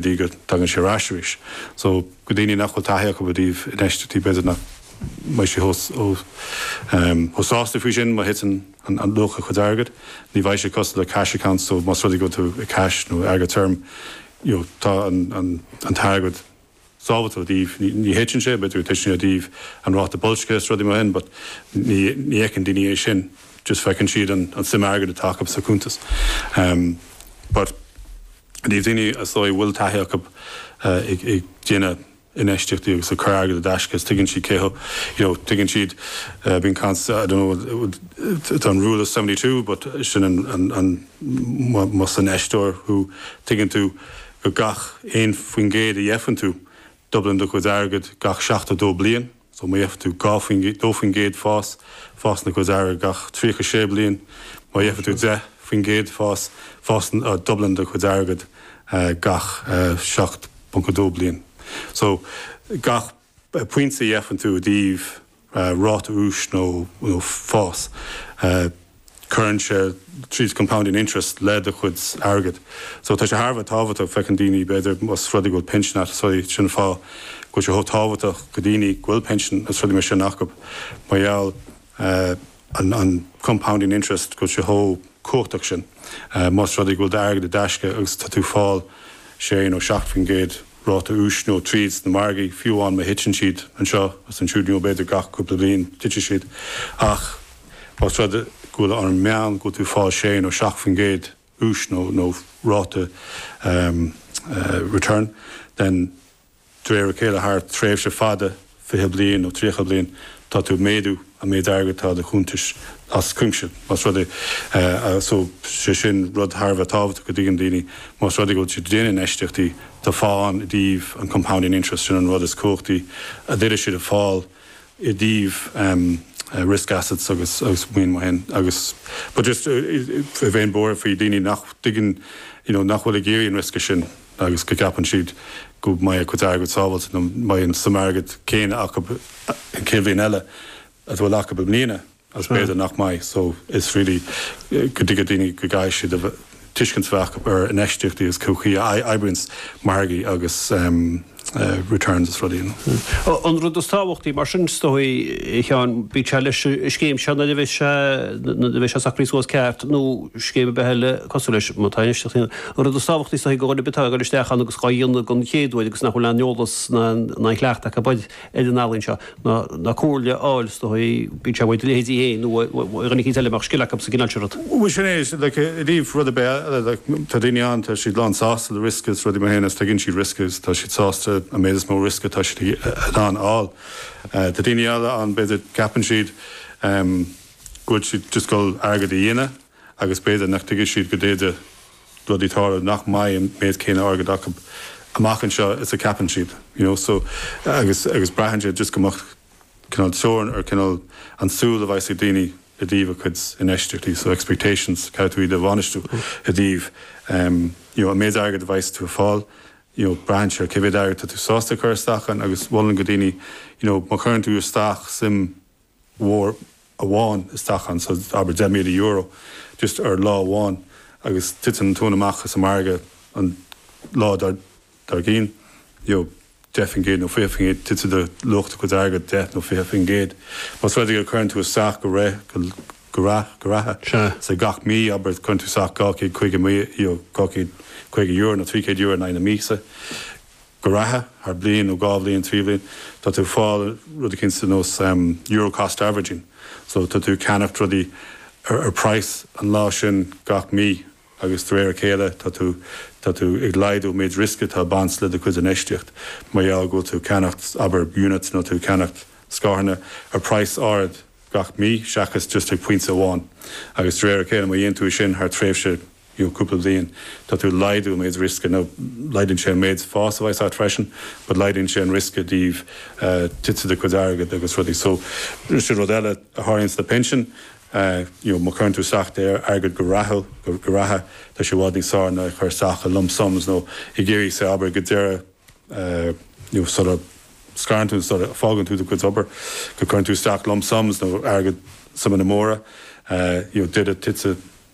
dtí go dtagann sé ar ais arís. So go daoine nach bhfuil taithí acu i dtaobh infheistití b'fhéidir nach mbeidh sé chomh chomh sásta faoi sin má thiteann an an luach a chuid airgead. Ní bheidh sé cosúil le cash account so más rud é go bhfuil tú i cash nó airgead tirim you know tá an an an t-airgead sábháilte i dtaobh ní ní thiteann sé b'fhéidir go dtiteann sé i dtaobh an ráta boilscthe is rudaí mar sin but ní ní fheiceann daoine é sin just feiceann siad an an suim airgead atá acu sa cuntas. But. I dtaobh daoine ar ndóigh a bhfuil taithí acu ag déanamh infheistíochtaí agus ag cur airgead i dtaisce is tuigeann siad cén you know tuigeann siad bíonn caint I don't know tá an rule of seventy two but sin más infheisteoir thú tuigeann tú go gach aon faoin gcéad a gheibheann tú dúblann do chuid airgead gach seachtó dó bliain. Má gheibheann tú 2% fás, fásann do chuid airgead gach 36 bliain. Má gheibheann tú 10% fás, fás, dúblann do chuid airgead gach 7.2 bliain. So, gach pointe a gheibheann tú i dtaobh ráta úis nó fás, cuireann sé tríd compounding interest le do chuid airgead. So tá sé thar a bheith tábhachtach, feiceann daoine b'fhéidir más rud é go bhfuil pinsean agat, so sin an fáth go bhfuil sé chomh tábhachtach go daoine go bhfuil pinsean is rudaí mar sin acu mar gheall an an compounding interest go bhfuil sé chomh cumhachtach sin más rud é go bhfuil d'airgead i dtaisce agus tá tú fáil sé nó seacht faoin gcéad ráta úis nó tríd sna margaí, fiú amháin má thiteann siad anseo agus ansiúd, nó b'fhéidir gach cúpla bliain titfidh siad, ach más rud go bhfuil an meán go bhfuil tú ag fáil sé nó seacht faoin gcéad úis nó nó ráta return, then de réir a chéile thar tréimhse fada, 20 bliain nó 30 bliain, tá tú ag méadú an méid airgead atá i do chuntas as cuimse. Más rud é, agus tá sé sin rud thar a bheith tábhachtach go dtuigeann daoine, más rud é go bhfuil siad ag déanamh infheistíochtaí, tá fáth ann i dtaobh an compounding interest, sin an rud is cumhachtaí a d'fhéadfadh siad ag fáil i dtaobh risk assets agus maoin mar sin. Agus but just, bheinn buartha faoi daoine nach dtuigeann, you know, nach bhfuil ag iarraidh an riosca sin. agus go gceapann siad go mbeidh a gcuid airgead sábháilte nó mbeidh an suim airgead céanna acu an chéad bhliain eile agus a bhfuil acu i mbliana agus b'fhéidir nach mbeidh so is really go dtuigfidh daoine go gcaithfidh siad tuiscint a bheith acu ar infheistíochtaí agus cén chaoi a oibríonn margaí agus. returns is rudaí. An rud is tábhachtaí mar sin is dóigh, a Sheáin, bíodh sé leis an scéim seo nuair a bheidh sé, nuair a bheidh sé socraithe suas ceart nó scéim ar bith eile cosúil leis atá anois. An rud is tábhachtaí is dóigh go dhuine ar bith atá ag dul isteach ann agus dhá dhéanamh den chéad uair agus nach bhfuil aon eolas ná aon chleachtadh acu ar an ealaín seo. na comhairle a fháil is dóigh, bíonn sé amuigh ag do leithéidí féin nó ag duine eicínt eile a mbeadh scil acu sa gcineál sin rud. Bhuel sin é, like i dtaobh rud ar bith eile, like tá daoine ann tá siad lán sásta le riosca is rudaí mar sin is tuigeann siad riosca is tá siad sásta an méid is mó riosca atá siad in ann a fháil. Tá daoine eile ann b'fhéidir ceapann siad go bhfuil siad just ag dul airgead a dhéanamh agus b'fhéidir nach dtuigfidh siad go dtéann rudaí tharstu nach mbeidh an méid céanna airgead acu amach anseo is a cheapann siad you know so agus agus braitheann sé just go mbeadh cineál teorainn ar chineál an tsúil a bheas ag daoine i dtaobh a gcuid infheistíochtaí so expectations caithfidh tú iad a bhainistiú i dtaobh em you know an méid airgead a bheas tú ag fáil you know braitheann sé ar cé mhéad airgead tá tú sásta a chur isteach ann agus mholfainn do dhaoine you know má chuireann tú isteach suim mhór amháin isteach ann, so abair €10,000, just ar lá amháin agus titeann an tóin amach as an margadh an lá dár gcinn, you know, 10% nó 20%, titfidh do luach do chuid airgead 10 nó 20%. Más rud é go gcuireann tú isteach go réidh, go, go rialta, go rialta, so gach mí, abair cuireann tú isteach €250,000, you know, €250 nó €300 in aghaidh na míosa, go rialta, thar bliain nó dhá bhliain, trí bhliain, tá tú ag fáil rud eicínt ar nós Euro Cost Averaging. So tá tú ag ceannacht rudaí ar phraghas an lá sin gach mí agus de réir a chéile tá tú tá tú ag laghdú an méid riosca atá ag baint le do chuid infheistíocht mar gheall go bhfuil tú ag ceannacht abair units nó tá tú ag ceannacht scaireanna ar phraghas áirid gach mí seachas just ag pointe amháin agus de réir a chéile má dhéanann tú é sin thar tréimhse fhiú cúpla bliain, tá tú ag laghdú an méid riosca, now laghdaíonn sé an méid fás a bheas agat freisin, but laghdaíonn sé an riosca i dtaobh titim do chuid airgead agus rudaí. So, sin rud eile a tharlaíonns le pinsin, you know, má chuireann tú isteach do airgead go rathúil, go rialta, tá sé i bhfad níos fearr ná ag cur isteach i lump sums nó ag iarraidh, say, abair, go deireadh, you know, sula scoireann tú, sula bhfágann tú do chuid obair, go gcuireann tú isteach lump sums nó airgead, suimeanna móra, you know, i dtaobh titim,